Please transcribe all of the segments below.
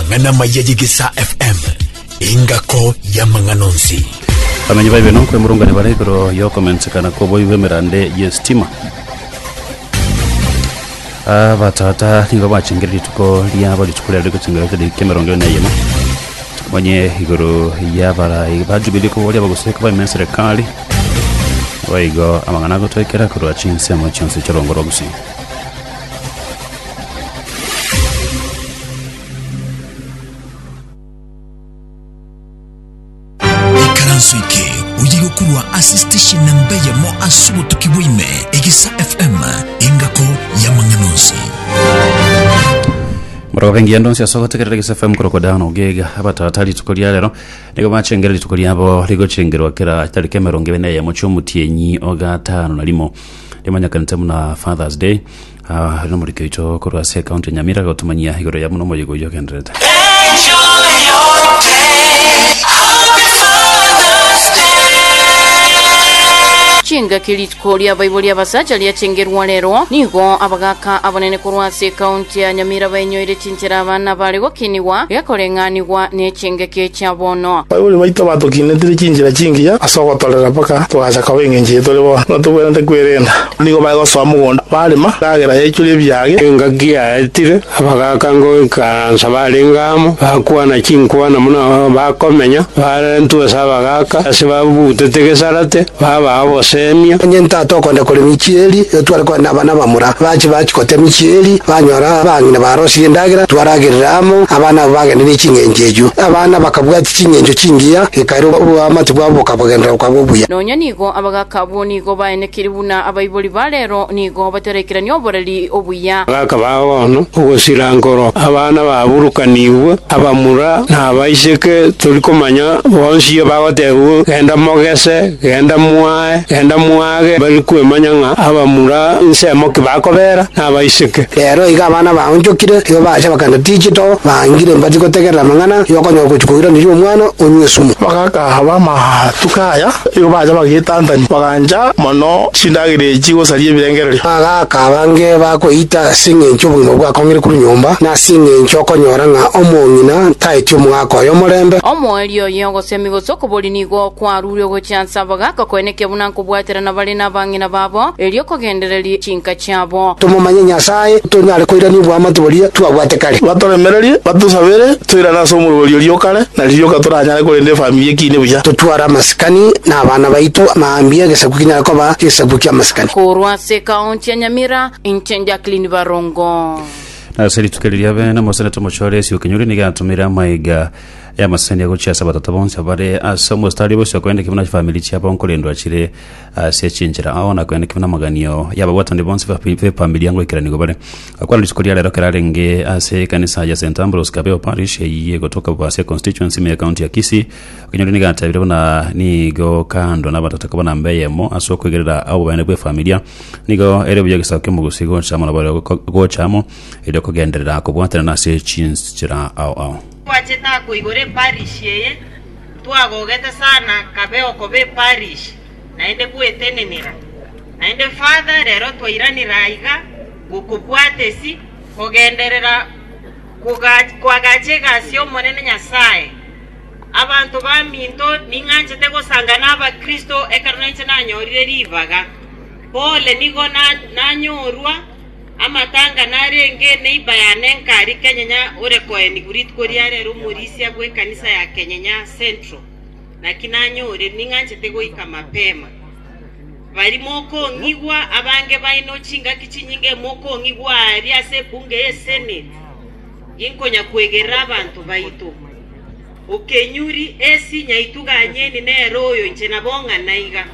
Amang'ana maya y'Egesaa FM, engako y'amang'ana onsi. Bamenyi baibe nokwemurungania bare igoro yokomensekana kw'oboi bw'emerande y'esitima. Abatata nigo bachengire rituko riabo rituko riarire gochengera ekereria ki'emerongo ene na eyemo. Onye igoro y'abarai ba Jubilee koboria abagusii koba ime enserekari. Boigo amang'ana agotwekera korwa chinsemo chionsi chi'orongo rwa Gusii. Ikaranso eke oyigokorwa ase station na mbeyemo ase obotuki bwaime egisa fm engako y'amang'ana onsi morogoka engiya ndonsi ase ogotegerera gisa fm korokwa dano gega abatata rituko ria rero nigo bachengera rituko riabo rigochengerwa kera tariki emerongo ebe na eyemo chiomotienyi ogatano na rimo rimanyekanete buna fathers day Aa, nomoriki oito korwa ase ekaunti ya Nyamira agotumanyia igoro ya buna omoyega oyio ogenderete. Chingaki rituko ria abaibori abasacha riachengerwa rero, nigo abagaaka abanene korwa ase ekaunti ya Nyamira bainyoire chinchera Enchera abana bare gokinigwa gekoreng'anigwa nechingeki chia bono. Baibori baito batokinetire chinchera chingiya ase ogotorera mpaka togacha koba engencho eye tore bono. Buna tobwenerete kwerenda, nigo baye gosoa mogondo barema, endagera yaechwa nebiage. Engaki yaetire, abagaaka ngoikaransa barenge amo, bakwana chinkwana buna bakomenya, barentwa ase abagaaka. Baaka ase babugutete gesarate, babaa oboseemia. Onye ntata okonde koremia echieri, igo tware kogenda nabana bamura. Bache bachia kotemia echieri, banyora abang'ina barosirie endagera, twaragerire amo, abana abwo bagende ne ching'encho echio. Abana bakabwatia ching'encho chingiya, gekaira oboamate bwabo bokabagenderera bokaba obuya. Nonya nigo abagaaka abwo nigo baenekirie buna abaibori ba reero nigo bataraikirania oboreri. obuya. Gakaba agono ogosira nkoro abana baburukanigwe, abamura na abaiseke, tori komanya bonsi bagoteebigwa, Genda mogese, genda mwae, genda mwage, bari kwemanya ng'a abamura nsemo ki bakobeera, na abaiseke. Rero igo abana baonchokire, igo bagacha bakagenda Tigito, bangire mbati gotegerera amang'ana y'okonyora ogochia koiraneria omwana onywa esumu. Bagaka aba amatuko aya, igo bacha bagetantania, bagancha mono chindagera echi gosaria ebirengererio. Agaaka abange bakweyita ase engencho obogima bwakong'ire korwa nyomba, na ase engencho okonyora ng'a omong'ina taeti omogaka oye omorembe. Omoerio oye ogosemi gose okobori nigo kwarurwe gochia ase abagaka koeneke buna nkobwaterana bare nabang'ina babo, erio kogendererie chinka chiabo. Tomomanye Nyasae, tonyare koirania oboamate boria twabwate kare. Batoremererie, batusabere, toirane ase omorwori oria o kare, na riroka toranyare korenda efamiri ekiine buya. Totware amasikani na abana baito, maambia egesaku kinyare koba egesaku ki'amasikani. Korwa ase ekaonti ya Nyamira, inche Jacqueline Barongo. Nase rituko riria bene omoseneta omochore Esio Kinyuri nigo atumire amaiga y'amasani agochia ase abatata bonsi abare ase omositari bosio korende kimwe na chifamiri chiabo nkorendwa chire ase chinchera ao na korende kimwe n'amaganio y'ababwatani bonsi b'efamiri ya ngoikeranigo bare akwana rituko ria rero kerarenge ase ekanisa ya St Ambrose Kabeo Parish eyio egotoka Bubasia Constituency ime y'ekaunti ya Kisii Onye ore nigo atabire buna nigo kando nabatata koba namba eyemo ase okoigerera obobaene bw'efamilia, nigo ere buya egesaku ki'omogusi gocha amo nabareo gocha amo, erio kogenderera kobwatanana ase chinchera ao ao. Twachete akoigora eparish eye twagogete sana kabe okoba eparish naende gwetenenera naende further rero twairanire aiga gokobwata esi kogenderera koga koagacha egasi y'Omonene Nyasaye. Abanto baminto, ning'anchete gosanga n'Abakristo ekero nainche nanyorire ribaga. Pole nigo nanyorwa amatanga narenge neiba ya Nenkari Kenyenya ore koeni Bridit koria are ere omorisia bw'ekanisa ya Kenyenya Central. Naki nanyore ning'anchete goika mapema. Baria mokong'igwa abange baino chingaki chinyinge mokong'igwa aaria ase ebunge y'Eseneti. Inkonya kwegerera abanto baito. Okenyuri esi nyaitu ganyeni nere oyo inche nabong'ana iga.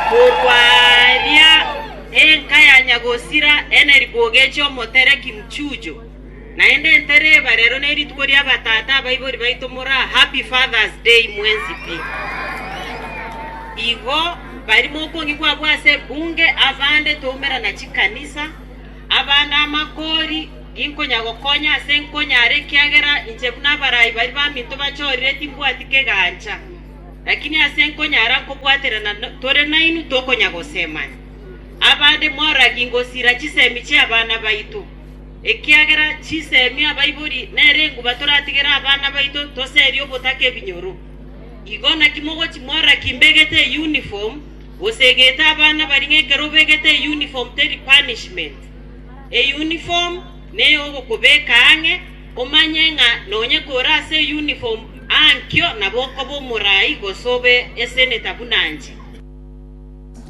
Korwa aaria enka ya nyagosira ene riboga eche omotereki mchujo, naende entere eba rero ne rituko ria batata abaibori baito mora Happy Father's Day mwensi pi. Igo bari mokong'igwa abwo ase ebunge, abande toumerana chikanisa. Abande amakoori inkonya gokonya aase nkonyara, ekiagera inche buna abarai baria baminto bachorire timbwati kegancha. Lakini aase nkonyara nkobwaterana tore nainwe tokonya gosemania. Abande moragie ngosira chisemi chi'abana baito, ekiagera chisemi abaibori nere enguba toratigere abana baito toserie obotaka ebinyoro. Igo naki mogochi moragie imbegete eyunifomu. Gose egete abana baria ng'ekero obegete eyuniform teri punishment. Eyuniform neyogokobeka ang'e, omanye ng'a nonye kore ase eyuniform aa nkio nabo okoba omoraai gose obe eseneta buna inche.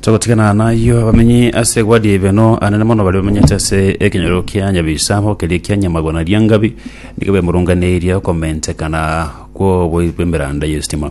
Togotigana nayio abamenyi ase egwadi y'ebeno anene mono baria bamenyete ase ekenyoro kia Nyabisaabo keria kia Nyamagwana Riangabi nigo bemurunganeirie okomentekana kw'oboibi bw'emeranda y'estima.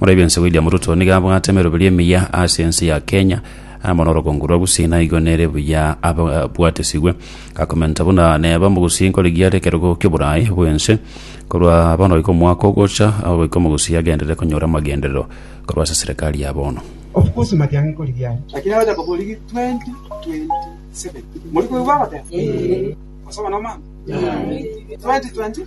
Moraibia inse William Ruto nigo abwate emeroberio emiya ase ense ya Kenya amo norogongo rwa Gusii naigo nere buya abwatesigwe. Gakomenta buna neba omogusii nkorigia are ekerogo ki'oboraai bw'ense. Korwa bono goika omwaka ogocha aho goika omogusii agenderere konyora amagenderero korwa ase serikali ya bono. Of course matiang'i nkorigia are. Lakini abacha koborigi 2027 morikoigwa goteba? Gose bono mama? 2020.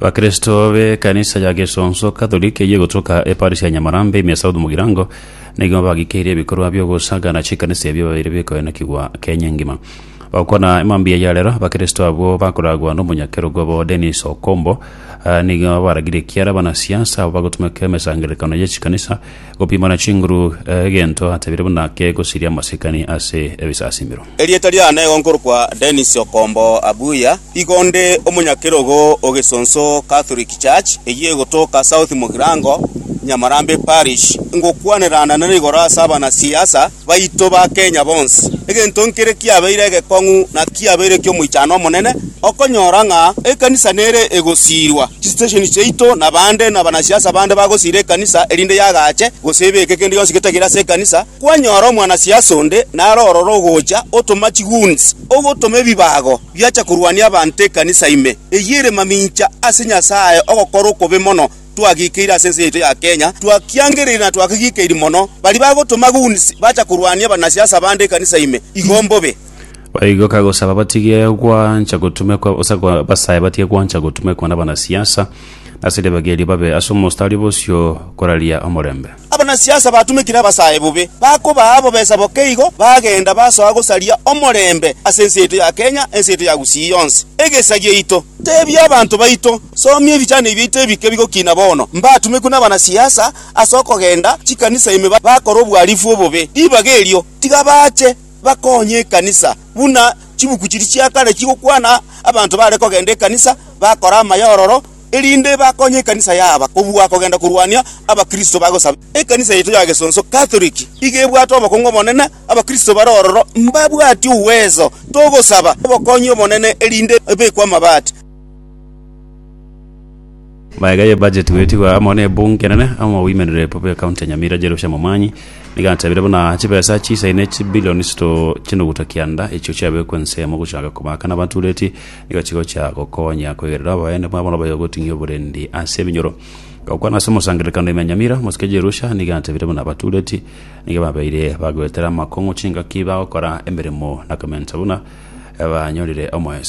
Abakristo b'ekanisa ya Gesonso Katholiki eyio egotoka eparisi ya Nyamarambe ime South Mugirango nigo bagikeirie ebikorwa biogosaga na chikanisa ebio babeire bikoenokigwa Kenya engima. Gokwana emambia ya rero, abakristo abwo bakoragwa nomonyakerogo obo Dennis Okombo ah, nigo baragirie ekiara abanasiasa abo bagotumeka emesangererekano ye chikanisa gopimana chinguru eh, egento atabire buna kegosiria amasikani ase ebisasimero. Erieta riane nigo nkorokwa Dennis Okombo Abuya, igo nde omonyakerogo o Gesonso Catholic Church eyio egotoka South Mugirango, Nyamarambe Parish. Ngokwanerana nere igoro ase abanasiasa baito ba Kenya bonsi. Egento nkere kiabeire egekong'u na kiabeire ekiomoichano omonene okonyora ng'a ekanisa nere egosiirwa, chisitesheni chiaito na bande nabanasiasa bande bagosiira ekanisa erinde yagache gose ebeke kende gionsi getagire ase ekanisa. Kwanyora omwanasiasi onde naro ororo ogocha, otoma chigoons, ogotoma ebibago biacha korwania abanto ekanisa ime, eyio ere mamincha ase Nyasae ogokora okobe mono twagikeire ase ense yaito ya Kenya, twakiangereire na twakegikeiri mono. Baria bagotoma goons bacha korwania abanasiasi abande ekanisa ime, igo mbobe. Baigoka gosaba batige gwancha gotumekwa gose gwa- basae batige gwancha gotumekwa nabanasiasa, ase ribaga erio babe ase omostari bosio koraria omorembe. Abanasiasa batumekire abasae bobe, bakobaa bobesa bokeigo, bagenda basoa gosaria omorembe ase ense yaito ya Kenya, ense yaito ya Gusii yonsi, egesa giaito. Tebia abanto baito, Somia ebichani biaito ebike bigokina bono, mbatumekwe nabanasiasa ase okogenda chikanisa ime bakore obwarifu obobe. Ribaga erio, tiga bache bakonye ekanisa, buna chibuku chiria chia kare chigokwana, abanto bare kogenda ekanisa bakore amaya ororo, erinde bakonye ekanisa yaaba kobua kogenda korwania abakristo bagosaba. Ekanisa yaito ya Gesonso Katoliki iga ebwate obokong'u obonene, abakristo bare ororo mbabwati ugweso. Togosaba obokonyi obonene erinde ebekwe amabati. Magega ye budget goetigwa amo ne ebunge enene amo oboimenere bobe ya county ya Nyamira Jerusha Momanyi nigo atebire buna chibesa chisaine chibillions to chinuguta kianda echio chiabekwe ensemo gochaka komakana abanto ureti Nigo chigochia gokonya kwegerera abaene babo nabaye goting'ia oborendi ase ebinyoro. Gokwana ase omosangererekano ime Nyamira, mosike Jerusha nigo atebire buna abatureti nigo babeire bagoetera amakong'u chingaki bagokora emeremo na komensa buna banyorire omoeso.